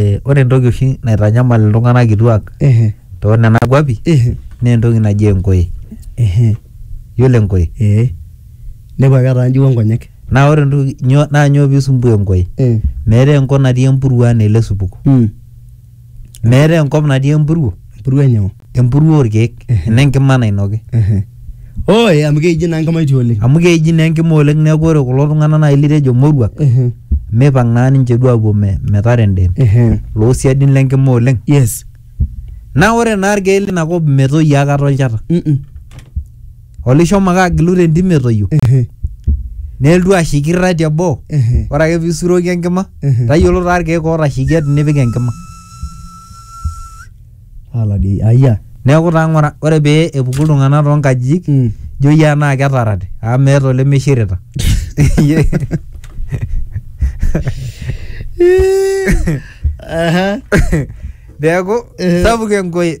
Eh, ore entoki oshi naitanyamal iltung'anak kituak Ehe. too nena kuapi Ehe. naa entoki naji enkoe Ehe. yiolo enkoe Ee. Nepu ake etaa njiwa nkonyek. naa ore entoki nyoo naa nyoo piisumbua enkoe Eh. meetai enkop natii empuruo anaa ele supuko Mm. meetai enkop natii empuruo empuruo enyoo empuruo orkeek enenkima nainoki oe amu keiji naa enkima itii oleng amu keiji naa enkima oleng neeku ore kulo tung'anak naaji litejo moruak mipang naa ninche duo apuo me- metara endeem loosiadin lenkima oleng yes naa ore naa irkeek linakop metoyio akata olchata Mm-mm. Ole ishomo ake agilu te ntim etoyio Ehe. neeltu ashikirra te boo Ehe. ore ake pisuroki enkima Ehe. tayiolo taa irkeek ootashikia tinipik enkima Ala dii. Aya. neeku taa ng'ura ore pee epuku iltung'anak toonkajijik Mm. ijo iyie enaa ketarate amu meeta olemishirita Ehe. neeku Ehe. sapuk enkoye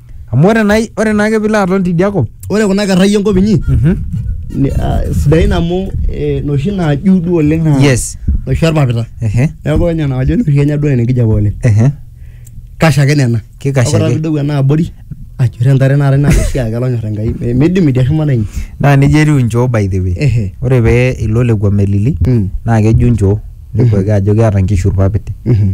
Amu ore naa ore naake piilo aton tidia kop Ore kuna kerrai enkop inyi mhm ni- ah, sidain amu eh, noshi naaju duo oleng naa Yes. noshi orpapita ehe neeku ore nena kajo noshi kenya duo nena enkijape oleng ehe kash ake nena Kikash Ore ake. pidou ena abori ajur entare naata ina oshi ake lonyor enkai Eh, midim idia shumata inyi naa neija etiu inchoo by the way ehe ore pee ilo lekua melili Mm. naa keju inchoo nepuo ake ajo keeta inkishu irpapit mhm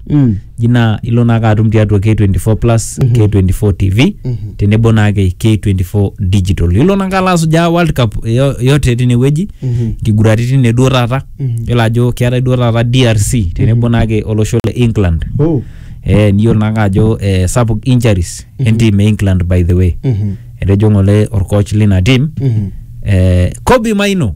Mm. ji naa ilo naake atum tiatua K24 plus K24 TV tenebo naake K24 digital ilo naake alo asujaa World Cup yo- yote tinewueji nkiguraritin ne duo taata yiolo ajo keetae duo taata DRC tenebo naake olosho le England Oh. eh, niyiolo naake ajo eh, sapuk injuries entim e England by the way Mhm. etejo ng'ole orcoach lina tim Mhm. eh, Kobe Maino